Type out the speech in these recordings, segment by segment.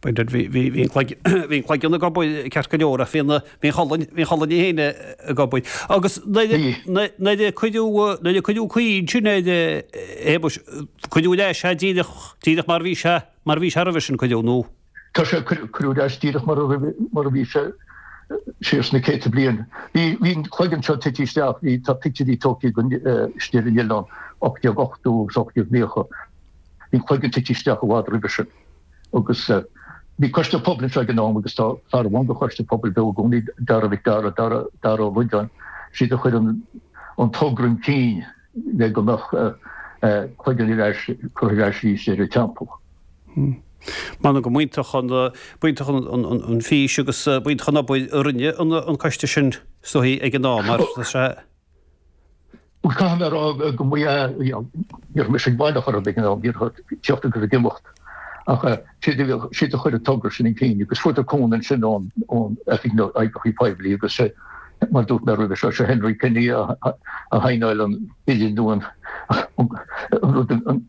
Bhí an cloigeann go bail ceart go leor ach bhí an cholainn féin go bail. Agus nuair a cuireadh caoi ansin ar Shéamus, cuireadh leis é díreach mar a bhí sé, mar a bhí sé roimhe sin, cuireadh, nó? Tá sé, cuireadh leis díreach mar a bhí sé siar sna céadta bliain. Bhí an cloigeann seo ag titim isteach, tá pictiúirí tógtha istigh ar an oileán, 1880 agus 1890. Bhí cloigeann tite isteach i bhfad roimhe sin agus bhí Coiste Pobail anseo ag an am agus tá fear amháin de Choiste Pobail beo i gcónaí, Dara Mhac Dara, Dara, Dara Ó Loideáin, siad a chuir an togra chun cinn le go mbeadh cloigeann curtha ar ais arís ar an teampall. M'anam go mb'iontach an mb'iontach an fhís agus mb'iontach an obair a rinne an coiste sin sa chaoi ag an am, mar is é. Caithfidh mé a rá go mbíonn, you know, ní raibh mise baileach orthu ag an am, bhí mé ag tíocht agus ag imeacht ach siad a bhíodh, siad a chuir an togra sin chun cinn agus fuair siad cúnamh ansin ón, ón Oifig na nOibreacha Poiblí agus sé, mar a dúirt mé roimhe seo, sé Henry Kenny a shaighneáil an bille nua, an, an, an rud, an,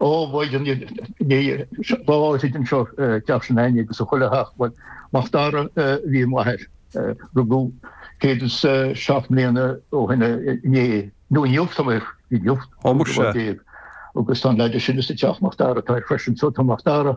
Ó, bhuel, i lámha chuile dhuine anseo teach Sean Annie agus a chuile theach. Bhuel, Mac Dara a bhí ar m'athair. Rugadh céad is seacht mbliana ó shin inné, nó inniu, tá mé ag rá, inniu, Ó, an muise. bhfómhar déag. Agus tá an leaid sin sa teach Mac Dara, tá freisin, tá Mac Dara.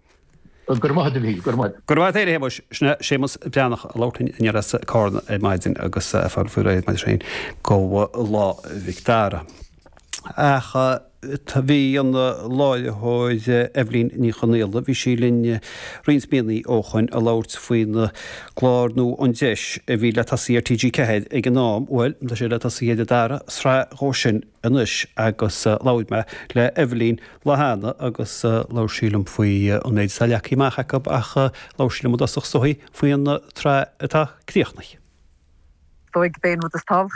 Go raibh maith a't, a Mhíchíl, go raibh maith a't. Go raibh maith a't, a Shéamais. Sin é Séamas Breathnach ag labhairt linn aniar as Carna ar maidin agus é ag fáil faoi réir, mar sin, go Lá Mhic Dara. Ach bhí an láithreoir Eibhlín Ní Chonghaile, bhí sí linn roinnt míonnaí ó shoin ag labhairt faoin gclár nua An Deis a bhí le tosaí ar TG4 ag an am. Bhuel, tá sé le tosaí ar an dara sraith dhó sin. anois agus labhair mé le Eibhlín an lá cheana agus labhair sí liom faoi an méid atá leagtha amach acu ach labhair sí liom i dtosach sa chaoi faoi an tsraith atá críochnaithe.